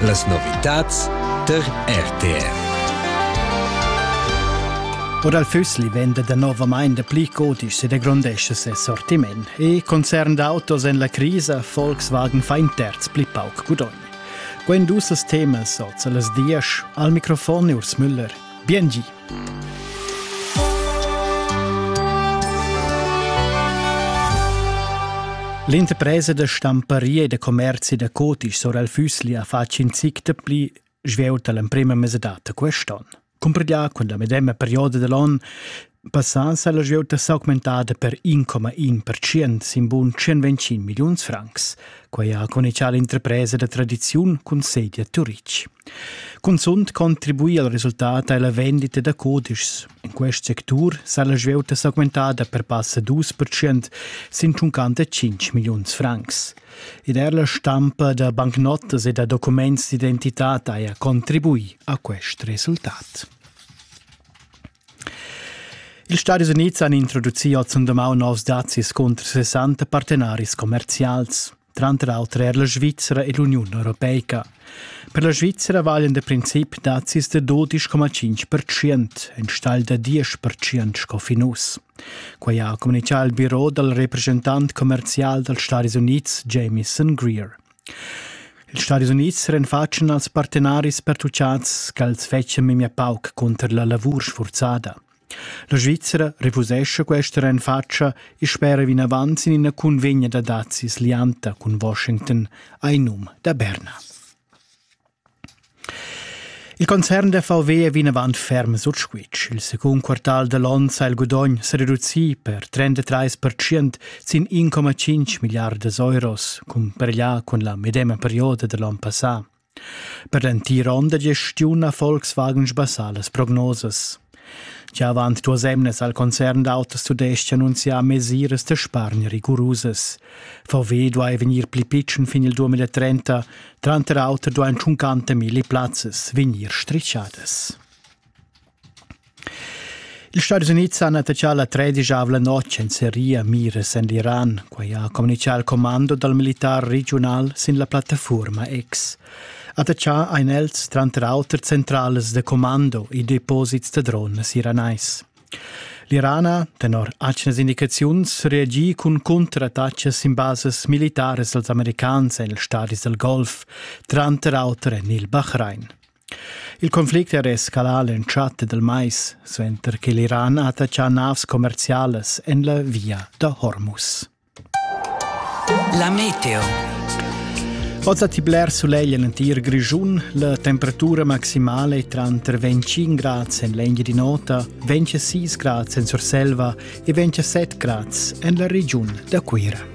Las novitads tar RTR. O dal Füssli vende danovamain dapli codisch e degrondesce ses sortiment e concern d'autos en la crisa Volkswagen fa in terz pli pauc gudogn. Quen dus temas oz las dias al microfon Urs Müller. Biengi. L'interpresa da stamparia e da commerzi da Cotisch sur el Füssli ha fatg in zic da pli svelt l'emprema mesadata quest'on. Cumpredià con la medema perioda dell'on passà sa la svieuta s'augmentada per 1,1% sin bun 125 milliuns francs. Quai ha conichà l'interpresa da tradiziun cun sedia Turic. Cunzunt contribui al resultat ei la vendita da cudischs. In quest sectur sa la svieuta s'augmentada per passa 2 percent sin tschuncanta 5 milliuns francs. Ed er la stampa da bancnotas e da documents d'identità haja contribui a quest resultat. Ils Stadis Unids han introducì oz und domau novs dazis cunter 60 partenaris commerzials. tranter auter er la Svizzera e l'Uniun Europeica. Per la Svizzera valen da princip nazis da 12,5%, enstagl da 10% sco fin uss. Quai ha communitgà il biro dal represchentant commerzial dals Stati Unids Jamieson Greer. Ils Stati Unids renfatschen als partenaris pertucciats ch'els fetschan memia pauc cunter la lavur sfurzada. La Svizzera refusescha questa renfatscha e spera vinavant sin ina cunvegna da dazis lianta cun Washington, ai num da Berna. Il concern da VW è vinavant ferm sut squitsch. Il secund quartal da l'onn sa il gudogn sa reducì per 33% sin 1,5 miliardas euros, cumpareglià cun la medema perioda da l'onn passà. Per l'entira onn da gestiun ha Volkswagen sbassà las prognosas. Gia avant duas emnas al concern d'autos tudestg annunzià mesiras da spargn rigurusas. VW duai vegnir pli pitschen fin il 2030, tranter auter duain tschuncanta milli plazzas vegnir strischadas. Ils Stadis Unids han attachà la tredisavla notg en seria miras en l'Iran. Quai ha communitgà il commando dal militar regiunal sin la plattafuorma X. Attachà ein els tranter auter centrales de commando e deposits da drones iranais. L'Irana, tenor atgnas indicaziuns, reagì cun contrattatgas sin bases militares als americans en ils stadis del Golf, tranter auter en il Bahrain. Il conflict era escalà l'entschatta dal mais, suenter che l'Iran ha attaccà navs commerzialas en la via da Hormuz. La meteo. Oz ha ti bler sulegl en l'entir Grischun. La temperatura maximala è tranter 25 grads en l'engia di nota, 26 grads en Surselva e 27 grads en la regiun da Cuira.